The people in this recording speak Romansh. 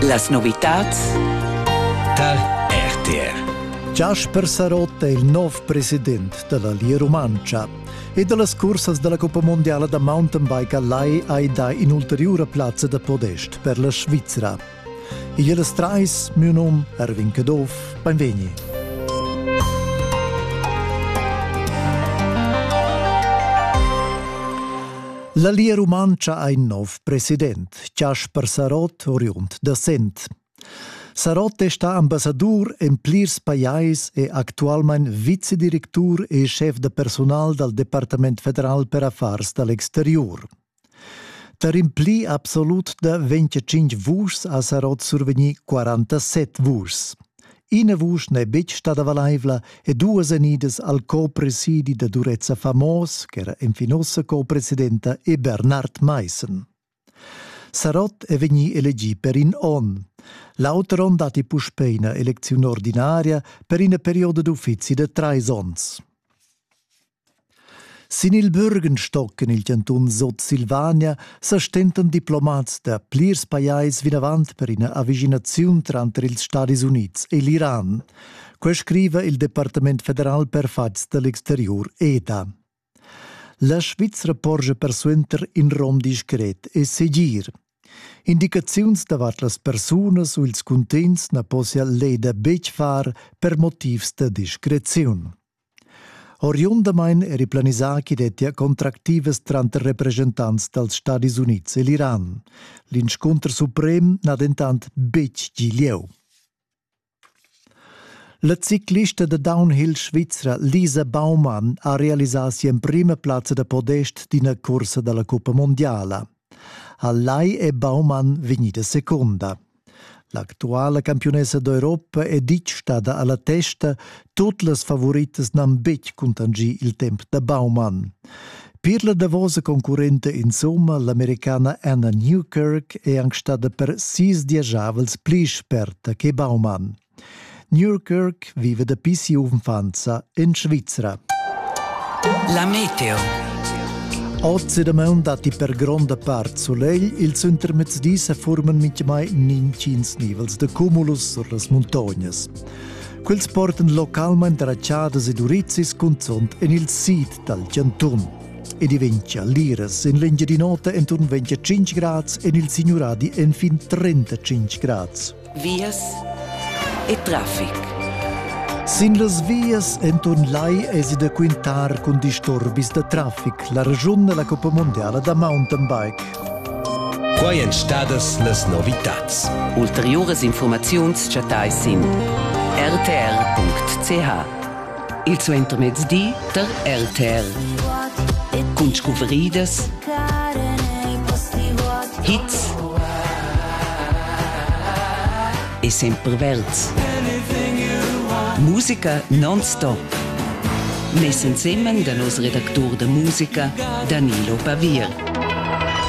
Las novitads tar RTR. Jasper Sarotta è il nov president della Lia Rumantscha e dallas cursas della Coppa Mondiala da mountain bike a Lai hai dà in'ulteriura plazza da podest per la Svizra. Igl es trais, miu num Erwin Caduff, benvegni. La Lia Rumantscha ha in nov president, Chasper Sarott, oriund da Sent. Sarott è stà ambassadur en plirs pajais e actualmain vicedirectur e schef da personal dal Departament federal per affars da l'exterior. Per impli absolut da 25 vuschs ha Sarott survegnì 47 vuschs. Ina vusch n'è betg stada valaivla e duas enidas al co-presidi da Durezza Famos, ch'era enfin ussa co-presidenta, e Bernard Maissen. Sarott è vegnì elegì per in onn. L'auter onn datti puspè ina elecziun ordinaria per ina perioda d'uffizi da trais onns. Sin il Bürgenstock en il chantun Sutsilvania sa stentan diplomats da plirs pajais vinavant per ina avischinaziun tranter ils Stadis Unids e l'Iran. Quai scriva il Departament federal per fatgs da l'exteriur EDA. La Svizra porscha persuenter in rom discret e segir. Indicaziuns davart las persunas u ils cuntegns na possia l'EDA betg far per motivs da discreziun. Oriundamain eri planisà ch'i dettia contractivas tranter represchentants dals Stadis Unids e l'Iran. L'inscunter suprem n'ha dentant betg gì lieu. La ciclista da downhill svizra Lisa Baumann ha realisà si'emprima plazza da podest d'ina cursa da la cuppa mondiala. A Lai è Baumann vegnida secunda. L'actuala campiunessa d'Europa è ditg stada a la testa, tut las favoritas n'han betg cuntanschì il temp da Baumann. Per la davosa concurrenta insomma, l'americana Anna Newkirk, è anc stada per sis diasavels pli sperta che Baumann. Nürkirk vive dapi sia unfanza in Svizra. La meteo. Oz da maun datti per gronda part solegl, ils intermezzdis forman mitgemai nintgins nivels de cumulus sur las muntognas. Quels portan localmain dratschadas ed urizis cunzont en il sid dal chantun. Ed ventia liras en l'Engiadinota enturn ventia 5 grads, en il Signuradi enfin 35 grads. vias e traffic. Sin las vias enton lai esi da quintar cun disturbis da traffic la regiun della Coppa Mondiala da mountain bike. Quai èn stadas las novitads. Ulteriuras informaziuns chattai sin rtr.ch. Il suentermezdi tar RTL. Cun scuvridas, hits e sempre verds. Musica non-stop. Mess ensemen da nos redactur da musica Danilo Pavir.